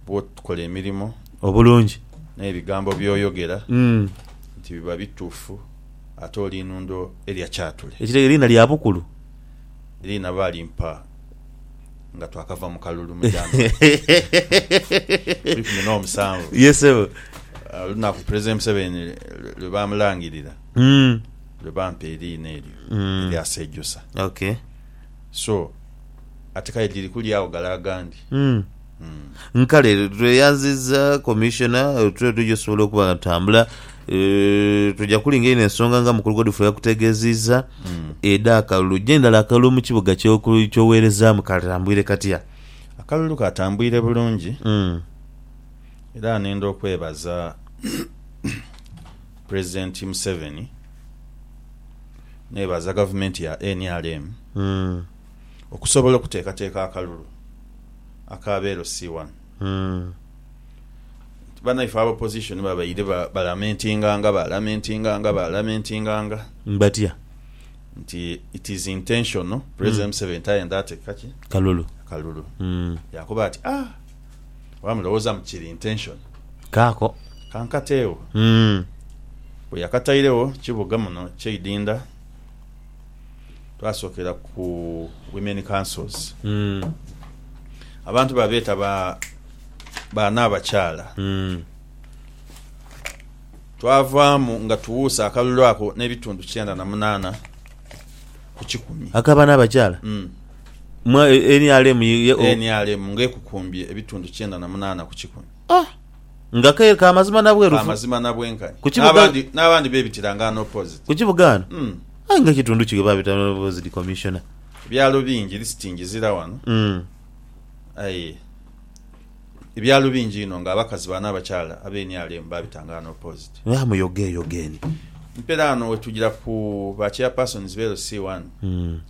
bw'okola emirimo obulungi n'ebigambo by'oyogera nti biba bituufu, ate oli inundo erya kyatule. Ekitegere liina lya bukulu. Liina baalimpa nga twakava mu kalulu mu January eikumi n'omusanvu, olunaku Pulezidenti Museveni lwe baamulangirira lwe bampa eriina eryo erya Sejusa. So. Ate kale dhiri kulyagho gale agandi. Nkale tweyanziza Commissioner tule tuja osobola okuba nga tutambula Eh, tuja kulinga eno ensonga nga mukulu Godfrey yakutegeziza eda akalulu je ndala akalulu mukibuga kyoku- kyowerezamu katambwire katya Akalulu katambwire bulungi Mm. era nenda okwebaza president Museveni nebaza gavumenti ya nrm Mm. okusobola okuteekateeka akalulu aka beelo si wano nti banaife aba opposition babaire balamentinganga, balamentinganga, balamentinganga. Batya? Nti it is intentional President Museveni tayendha ateeka ki? Kalulu. Kalulu. Yaakoba ati, Ah! Oba mulowooza mbu kiri intentional. Kaako. Kankateegho. Bwe yakatairegho kibuga muno kyeidinda. twasokera ku women councils abantu babeta ba baana abakyala twavaamu nga tuwuuse akalulu ako n'ebitundu kyenda na munaana ku kikumi akabana abakyala Mm. mwa e- nrm ye- ye- o- nrm ng'ekukumbye ebitundu kyenda na munaana ku kikumi Ah! Nga kaire ka mazima na bwerufu. Ka mazima na bwenkani. Ku kibuga. N'abandi, n'abandi bebitira nga an opposite. Ku kibuga ghano. Mm. Aye nga ekitundu ki ghe babita an opposite Commissioner. Ebyalo bingi listingi zira ghano. Mm. Aye ebyalo bingi inho nga abakazi bano abakyala abe nrm babita nga an opposite. Gha muyoge eyoge ni. Mperaano wetugira ku ba chairpersons be LC1. Mm.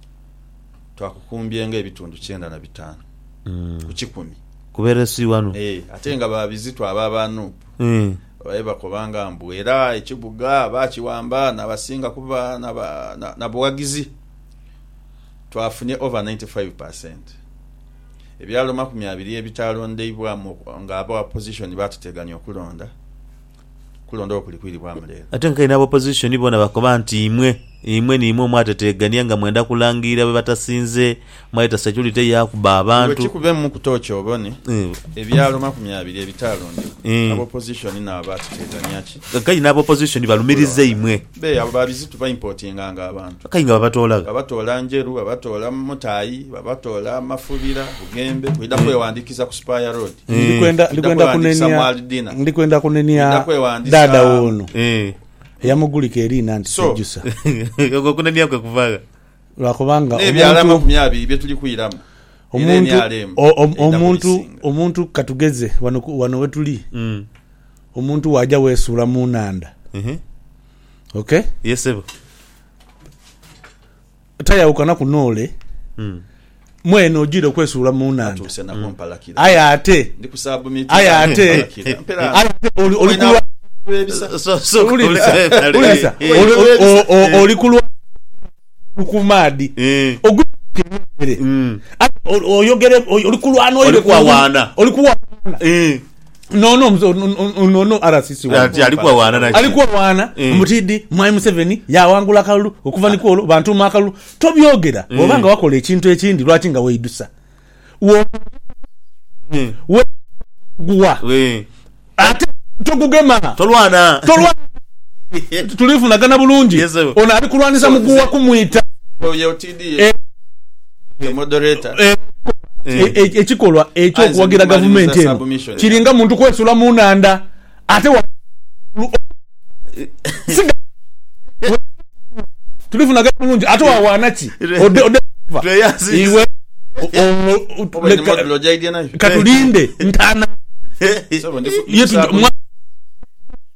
twakukumbye nga ebitundu kyenda na bitaanu ku kikumi. Ku be LC wano. Ee, ate nga ba bizito abo aba nup babaire bakobanga mbu era ekibuga baakiwamba n'abasinga kuba na bughagizi. Twafunye over ninety five per cent. Ebyalo makumi abiri ebitaalondeibwamu ng'aba opposition baatuteganya okulonda. Kulondawo kuli kwiribwamu leero. Ate nkaire n'aba opposition boona bakoba nti imwe, imwe niimwe omwateteegania nga mwenda kulangirira be batasinze, mwayeta securite ye akuba abantu. Iwe kikubemu ku toochi obone ebyalo makumi abiri ebitaalondebwa, aba opposition nabo baateteegania ki? Nkaire n'aba opposition balumiriza imwe. Be abo babizitu ba importinganga abantu. Aye nga babatoola gha? Babatoola Njeru, babatoola Mutayi, babatoola Mafubira, Bugembe, kwidha kwewandiikiza ku Spire Road. Ndi kwenda ndi kwenda kunenia ndi kwenda kunenia dada wono eh. eyamugulika eriina nti so, sejusa ogwo kunenia kwe kuvagha lwakubanga nebyala amakumi abiri byetuli kwiramu omuntu omuntu omuntu katugeze wano wano wetuli mm. omuntu waja wesuula mu nanda mm -hmm. okay yes sebo Tayawukanaku n'ole. Mwene ojiire okwesuula mu nhandha. Aye ate, aye ate, aye ate oli, oli kulwa, wuliriza, wuliriza, oli, o, o, oli kulwa ku maadhi ogwi ere, aye oyogere, oli kulwana, oli kuwawaana. Nono nono RCC wali ali kwa wana na ali kwa wana mm. mutidi mwai Museveni yawangula kalulu okuva ni kwolo bantu ma kalulu to byogera mm. obanga wakola ekintu ekindi lwaki nga weidusa wo mm. we guwa we ate to gugema to lwana to lwana tulifunagana bulungi yes, ono ali kulwanisa muguwa kumwita Ekikolwa eky'okuwagira gavumenti eno kiringa muntu kwesula mu nhandha ate wano waigulu okuva si gavumenti eno bwebatukuwa tulifunagayo bulungi ate wawaana ki ode ode kuva iwe katulinde ntanhage mwami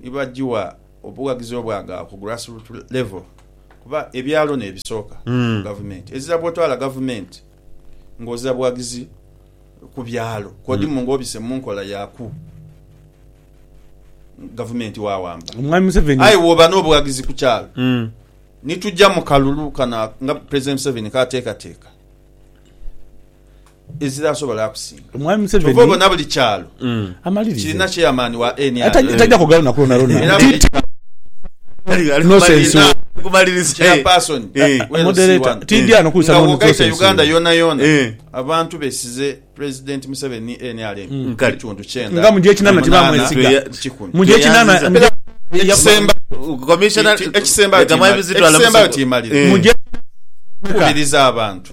ni bagigha obughagizi obwagala ku grassroot level kuba ebyalo n'ebisooka ku gavumenti. Ezira bw'otwala gavumenti ng'oza bughagizi ku byalo kw'odimu ng'obise mu nkola ya ku gavumenti waawamba. Omwami Museveni. Aye bw'oba n'obughagizi ku kyalo ni tugya mu kalulu kano nga Pulezidenti Museveni k'ateekateeka. Ezira asobola akusinga. Omwami Museveni kyova obona buli kyalo kirina chairman wa nrm era buli kyalo chairperson we LC1 nga bwogaita Uganda yonayona abantu besize president Museveni ni nrm ebitundu kyenda munaana ku kikumi. Ekisembayo timaliriza. Nkubiriza abantu.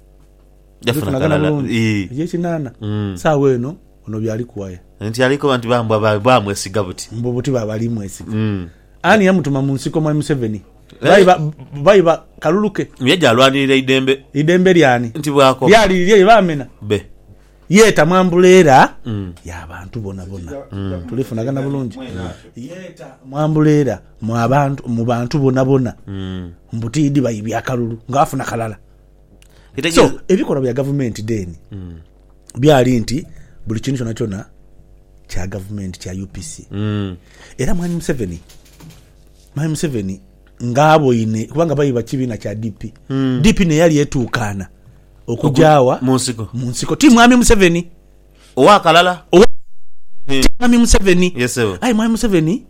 Jafuna Tufunagana kalala. bulungi. Ii. Eky'ekinaana, Mm. saagho eno ono byali kuwaya Nti ali koba nti bambwa ba- bamwesiga buti. mbu buti baaba ali mwesiga. Mm. Ani yamutuma mu nsiko Mwami Museveni? Eh. Bayi ba- bayi ba kalulu ke? Ye gyalwanirira eidembe Eidembe lyani? nti bwakoba Lyali lirye lye baamena? be. Yeeta mu ambuleera Mm. y'abantu bonabona. Tulifunagana bulungi. Yeeta mu ambuleera mu abantu- mu bantu bonabona Mm. mbu tiidhi bayi bya kalulu ng'afuna kalala. So, ebikolwa bya gavumenti then byali nti buli kintu kyonakyona kya gavumenti, kya UPC. Era Mwami Museveni, Mwami Museveni nga aboine, kubanga baye ba kibiina kya DP, DP n'eyali etuukaana okugya wa? Mu nsiko. Mu nsiko. Ti Mwami Museveni. Owa kalala. Owa, ti Mwami Museveni. Yes, ssebo. Aye Mwami Museveni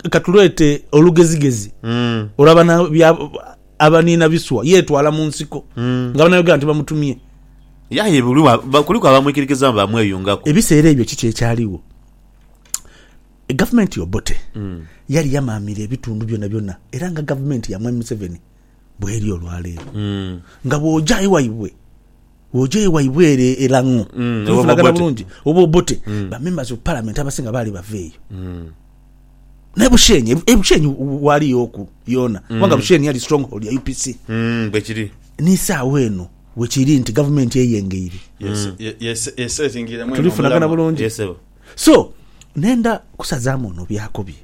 Ka tuleete olugezigezi olwa bana abaniina biswa yeetwala mu nsiko nga banayogera nti bamutumye. Ye aye kuliku abamwikirikiza nga baamweyungaku. Ebiseera ebyo kiki ekyaligho? Gavumenti Obote yali yamaamira ebitundu byonabyona era nga gavumenti ya Mwami Museveni. bweri olwaleero nga bwoja ewaibwe bwoja ewaibwe ere elang'o mm. tulifunagana bulungi oba obote mm. bamembers of parliament abasinga baali bava eyo mm. naye bushenyi ebushenyi e, waliyo oku yona mm. kubanga bushenyi yali stronghold ya upc mm, bwekiri nisaawa eno wekiri nti gavumenti eyengeire yes, mm. yes, yes, yes, tulifunagana bulungi yes, so nenda kusazamu ono byakobye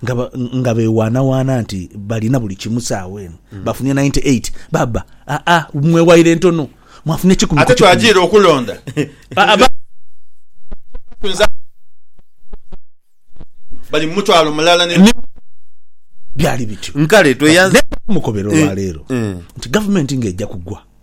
nga nga bewaanawaana nti balina buli kimu saawa eno, bafunye ninety eight. Baba, Aa, mwewaire ntono, mwafuna ekikumi ku Ate kikumi. twajiira okulonda. Aa, ba. Tuyinza bali mu mutwalo mulala ne. Ni byali bityo. Nkale tweyanzi. Naye mukobera olwaleero nti gavumenti ng'eja kugwa.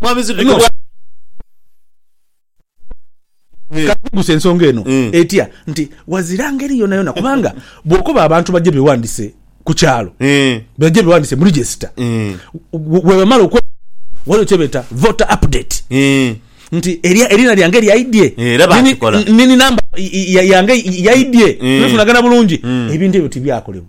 Mwami Ziddu Eno. Eh. Kanjuguse ensonga eno Mm. etya nti wazira ngeri yonayona kubanga bwokoba abantu baje bewandise ku kyalo Eh. baje bewandise mu register Eh. we- webamala okwe waliwo kyebeta voter update Eh. nti erya- erina lyange lyaidye Eh, era bakikola. nini namba i- i- ya- yange yaidye Mm. tunafunagana bulungi Mm. ebintu ebyo tibyakolebwa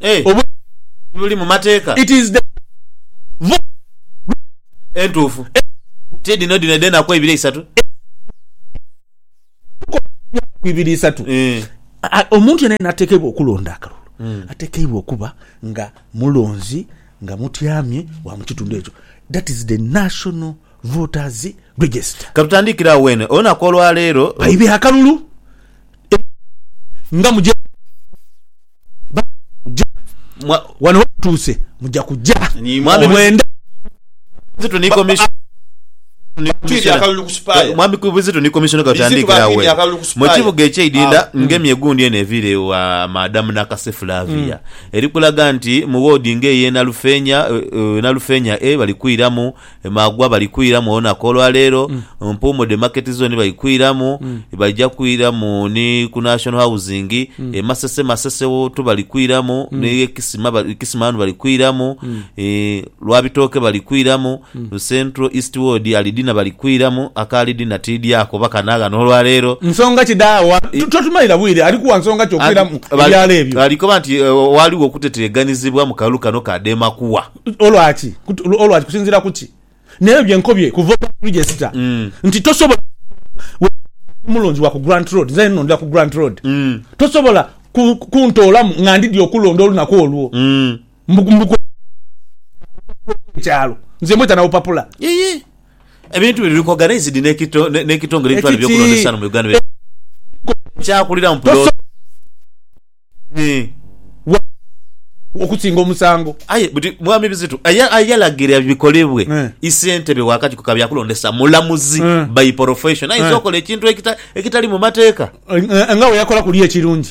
Eh, Obu- buli mu mateeka it is the voice entuufu ti dhino dhino edh'enaku eibiri eisatu ku ibiri isatu Eh, A- omuntu yena yena atekeibwa okulonda akalulu Mm. atekeibwa okuba nga mulonzi nga mutyamye wa mukitundu ekyo that is the national Voters Register. Katutandikire agho weene olunaku olwa leero. Baibe akalulu nga muja kuja wano we tutuuse muja kuja mwami Bwenda Mwami Kizito ni Komisona Katutandikire agho weene mu kibuga ekye Idinda nga emyeguundi eno eviire ewa Madam Nakase Flavia eri kulaga nti mu woodi nga eye Nalufeenya Nalufeenya A bali kwiramu Emaagwa bali kwiramu olunaku olwa leero, Mpuumu dhe Market Zone bali kwiramu, baija kwiramu ni ku National Housing, e Masese Masese tu bali kwiramu, ni e Kisima Kisima ghano bali kwiramu, Lwabitooke bali kwiramu, Central East Ward Ali Dina bali kwiramu, aka Ali Dina tiidhi ako oba ka naagha n'olwa leero. Nsonga ki dha wa? Totumalira bwire, ali kuwa nsonga ki okwiramu ebyalo ebyo? Ali koba nti ghaligho okuteteeganizibwa mu kalulu kano ka Demakuwa. Olwaki? Olwaki? Kusinziira ku ki? N'ebyo bye nkobye kuva olwa Blue Jay Sita nti tosobola kusobola Ndi mulungi wa ku Grant Road, nze nnhundira ku Grant Road, tosobola kuntoolamu nga ndidhi okulonda olunaku olwo. Mbu kw'okuba nti obupapula obw'ekyalo, nze mbweta na bupapula. Ebintu bino biri kogana eisidi n'ekitongole ebitwala eby'okulonda esaano mu Uganda biri kyakulira mu pulooti. okusinga omusango. Aye buti mwami Bizitu ayalagira bikolebwe eh. isentebe wakakiiko ka byakulondesa mulamuzi eh. by profession ayinza eh. okola ekintu ekitali mu mateeka nga weyakola kuli ekirungi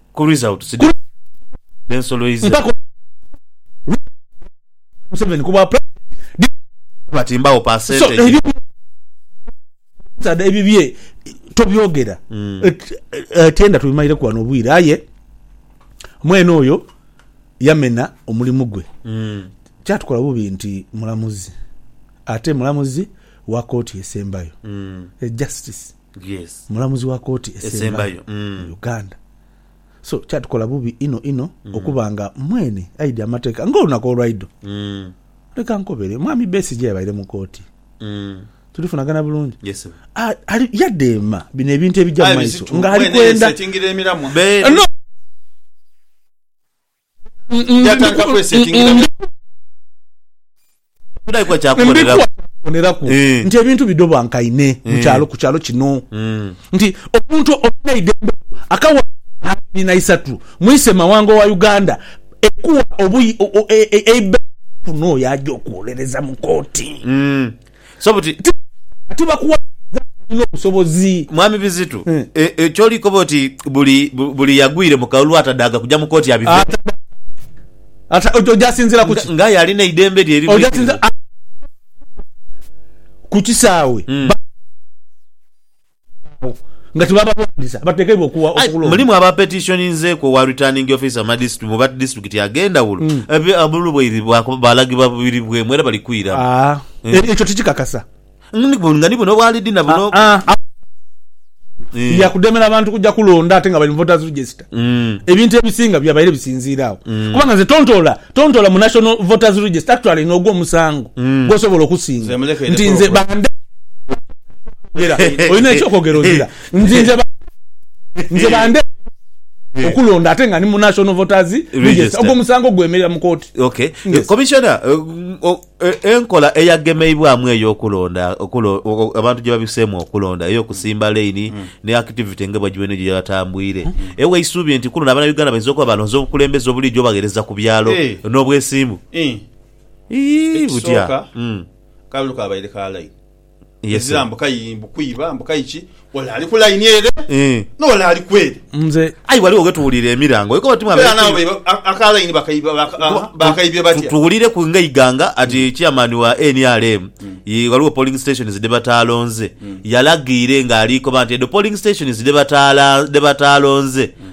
Ku result sidhani dhensoloize. Mpaka olwo Ruto yawa Museveni ku bwa president did Ruto aba timbawo percentage. So ebyo bye ebibye tobyogera tenda tubimalireku wano obwire aye mwene oyo yamena omulimu gwe kyatukola bubi nti mulamuzi ate mulamuzi wa kooti esembayo e justice. Mulamuzi wa Kooti Esembayo mu Uganda. So kyatukola bubi inho inho okuba nga mwene aidhi amateeka ng'olunaku olwaidho. Leka nkobere, Mwami Besigye yabaire mu kooti. Tulifunagana bulungi? Ali, yadheema bino ebintu ebija mu maiso ng'ali kwenda. Yatandika kwesetingira bya. Ndikuwa kya kuboneraku. Kuboneraku Eh. nti ebintu bidhobankaine mu kyalo ku kyalo kino Mm. nti omuntu olina eidembe lyo akawa abiri na isatu mwise mawanga wa Uganda ekuwa obuyi o- o- e- e- eibe kuno oyo aja okuwolereza mu kooti. Mm. So buti. Kati bakuwaliriza nti olina obusobozi. Mwami Bizitu, e, ky'oli koba oti buli, buli yagwire mu kalulu atadaaga kuja mu kooti abiveemu? Atadaaga. Ata, oja sinziira ku ki? Nga aye alina eidembe lye erirwikirivu. Ku kisaawe. Ba. agho nga tibabalwanisa abatekeibwa okuwa okulonda. Mulimu aba petitioninzeeku owa Returning Officer mu ba disitulikiti ag'endhawulo abeebulwaire baalagibwa biribwemu era bali kwiramu. Ekyo tikikakasa. Nga ni buno obwa Lidina buno. Lya kudemera bantu kuja kulonda ate nga bali mu Voters Register. Ebintu ebisinga byabaire bisinziira agho kubanga nze tontoola tontoola mu National Voters Register actually n'ogwo omusango gw'osobola okusinga nti nze bande eky'okwogera olina eky'okwogera ozira nti nze bande nze bande okulonda ate nga ni mu National Voters Register ogwo omusango gwemerera mu kooti. Okay. Commissioner, Enkola eyagemeibwamu ey'okulonda abantu gye babiseemu okulonda ey'okusimba laini ni akitivite nga bwe gibadde gye yatambwire ewa eisubi nti ku luno Abanauganda bainza okuba balonze obukulembeze obulijo obagheereza ku byalo n'obwesimbu. Ekisooka, akalulu kabaire ka laini. ezira mbu kayi mbu kwiba mbu kayi ki ole ali ku line ere eh. nole ali kwere nze ayi waliwo wetuwulira emirango eko bati mwabere kuli aka line bakaibye batya tuwulire ku nga iganga ati mm. chairman wa nrm mm. ye waliwo polling stations de batalonze mm. yalagiire nga alikoba nti edo polling stations de batala de batalonze mm.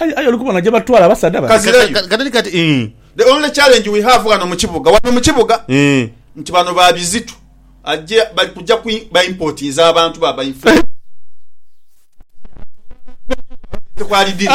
Aye, aye oli kubona gye batwala abasaadha bano? Kazira yo. Ka- Kati ni kati eh, The only challenge we have ghano mu kibuga, ghano mu kibuga, eh. nti bano ba bizitu. Aje, bali kuja ku, ba importinze abantu ba ba influencer. Aye abantu bano baba baidhye ku alidhini.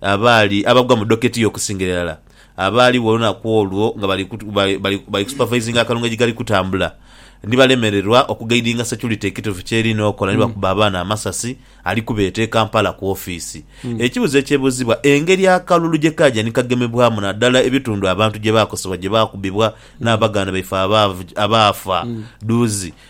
Abaali abagwa mu doketi y'okusingira irala abaaligho olunaku olwo nga bali bali kusupervisinga akalungu ejigali kutambula ni balemererwa okugaidinga securite ekituufu ky'erina okola ni bakuba abaana amasasi ali kubeeta e Kampala ku ofiisi. Ekibuzo ekyebuuzibwa engeri akalulu gye kaaja ni kagemebwamu nadala ebitundu abantu gye baakosebwa gye baakubibwa n'abaganda baife abaafa dhuuzi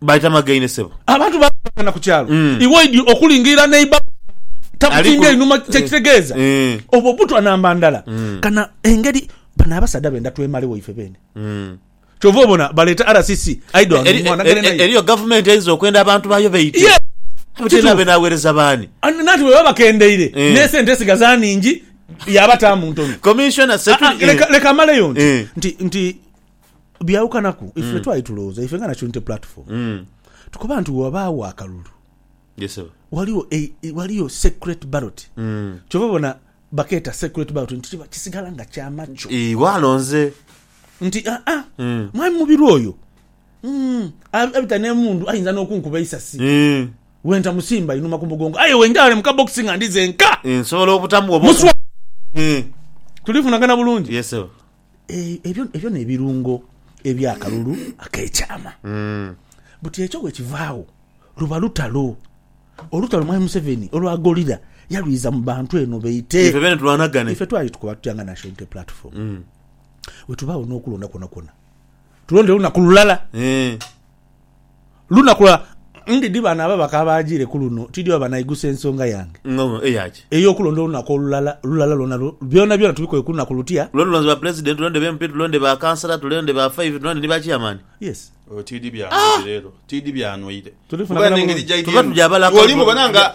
Baita magaine sebo. Abantu bangi bagana ku kyalo iwe oidhi okulingiira neiba wo takutimbye inhuma kyekitegeeza obwo butwa namba ndala kana engeri bano abasaadha benda twemale waife beene kyova obona baleeta RCC aidha wano mwana gende naye. Eriyo gavumenti einza okwenda abantu bayo baite Yes abe kituufu tenabe nawereza baani. Nanti bwebaba bakendeire nesente esigaza ningi yabataamu ntono. Commissioner Aa Security leka leka maleyo nti nti nti. Byawukanaku, ife mm. twali tulowooza ife nga Nationality Platform mm. tukoba nti wabaawo akalulu yes, waliwo, e, e, waliwo secret ballot mm. kyova bona bakeeta secret ballot nti kiba kisigala nga kyamaco e, walonze nti aa ah, ah, mm. mwami mubiru oyo mm. abita nemundu ayinza nokunkuba eisasi mm. wenta musimba inuma ku mugongo aye wenjale mukabokisi nga ndize nka nsobola obutamu obo mm. tulifunagana bulungi yes, ebyo n'ebirungo eby'akalulu ak'ekyama. Buti ekyo bwekivaagho luba lutalo. Olutalo Mwami Museveni olwa gorilla yalwiza mu bantu eno baite. Ife bene tulwanagane. Ife twali tukoba tutya nga National Unity Platform, bwetubaagho n'okulonda kwonakwona tulonde lunaku lulala. lunaku lwa. Ndi dhi bano ababaka abaajiire ku luno tidhi oba banaigusa ensonga yange. Ng'ono eya ki? Ey'okulonda olunaku olulala lulala lwona lwo. Byonabyona tubikole ku lunaku lutia? Lwo tulonde ba Pulezidenti, tulonde ba MP, tulonde ba Kansala, tulonde ba Five, tulonde ni ba Cheyamaani. Yes. Oyo tidhi byanoire leero, tidhi byanoire. Tuli funa Kuba bulamu n'engeri bulungi. gy'aidhyemu, Tuba tuja abalaaka. Bw'oli mubona nga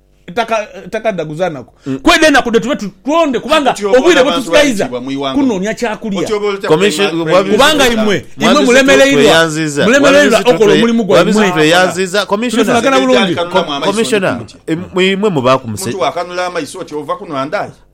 Taka taka dagu za naku kwedha enaku dhe tube tulonde kubanga obwire bwetusigaiza kunonia kyakulya kubanga imwe imwe mulemereirwa mulemereirwa okola omulimu gwaimwe tuli fulagana bulungi.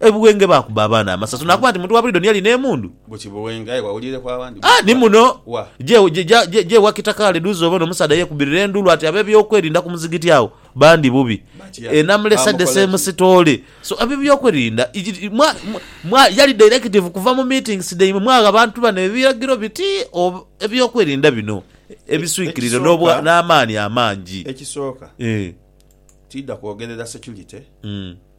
E Buwenge baakuba abaana amasaso naakuba nti muntu wa buliido niye alina emundu. Gwe ki Buwenge aye wawuliireku abandi? A, ni muno. Wa? Je, je, ja, je, je wa Kitakaale dhuuzi obone omusaadha yeekubirira enduulu ati ab'ebyokwerinda ku muzigiti agho bandi bubi. Batya? E Namulesa de Baamukola ki? Semusitoole. So, ab'ebyokwerinda, iji, mwa, mwa, mwa, yali directive kuva mu meetings dhaimwe mwagha abantu bano ebiragiro biti, o, ebyokwerinda bino E, ebiswikirire ekisooka, n'obwa, n'amaani amangi. ekisooka, Ee. tiidha kwogerera security. Mm.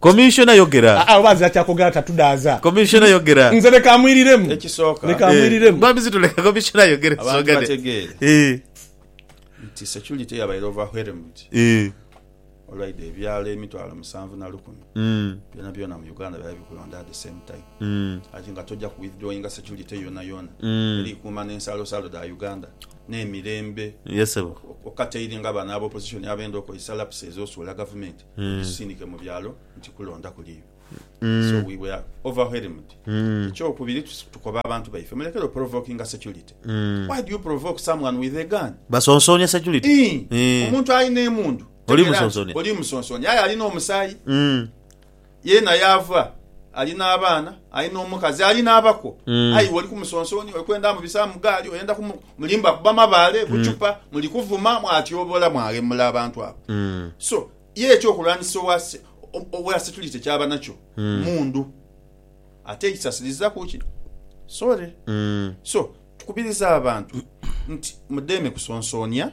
Commissioner yogera. Aa oba azira kyakogera tatudaaza. Commissioner yogera. Nze leka amwiriremu. Ekisooka. Leka amwiriremu. Eh, mwami Zito leka Commissioner ayogere tusogane. Abantu bategeere. Eh. Nti security yabaire overwhelmed. Eh. Olwaidha ebyalo emitwalo musanvu na lukumi. Mm. Byona byona mu Uganda byali bikulonda at the same time. Mm. Ati nga toja ku withdrawinga security yona yona. Mm. Eri kuuma nensalo salo da Uganda. n'emirembe. Ye sebo. Okataire nga bano aba opposition abenda okozesa lapse ezosuula gavumenti egisisindike mu byalo nti kulonda kuliyo. So we were overwhelmed. Ekyokubiri tukoba abantu baife mulekere oprovokinga security. Why do you provoke someone with a gun? Basonsonia security. Ii, Omuntu alina emundu tegera nti olimusonsonia aye alina omusaayi. Yeena yaava, ali n'abaana, ali n'omukazi, ali n'abakwo. Aye iwe oli ku musonsooni, oli kwenda amubisa mu gaali, oyenda kumu... Mulimba kuba mabaale, buchupa, muli kuvuma, mwatyoboola, mwaghemula abantu abo. So, ye eky'okulwanisa owa, owa security ky'aba nakyo, mmundu. Ate ekisasilizaaku ki? Sorry. So, tukubiriza abantu nti mudheeme kusonsoonia.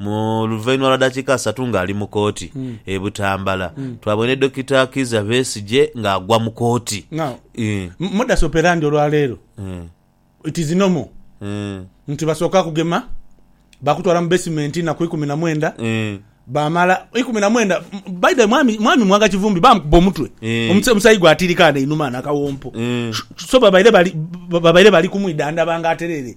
Mu luvainhuma lwa dakiika asatu nga ali mu kooti e Butambala, twabwene Dokita Kiiza Besigye nga agwa mu kooti. Now, Ii. modus operandi olwaleero Ii. it is no more Ii. nti basooka kugema, bakutwala mu basement enaku ikumi na mwenda, Ii. bamala ikumi na mwenda, by the way mwami, mwami Mwanga Kivumbi bamukuba omutwe, Ii. omusa- omusayi gwatirika ghano einhuma ghano akawompo, Ii. so babaire bali, babaire bali kumwidhandhaba nga atereere.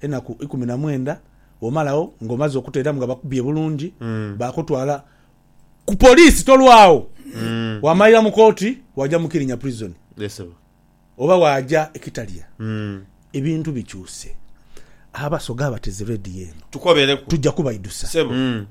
Enaku ikumi na mwenda bwomala agho nga omaze okuteeramu nga bakubye bulungi bakutwala ku police tolwagho wamalira mu kooti waja mu kirinya prison oba waja e kitalya ebintu bikyuse abasoga abateze radio eno tuja kubaidhusa.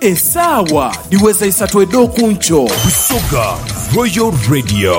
Esaawa dhiweza isatu edh'oku nkyo. Busoga Royal Radio.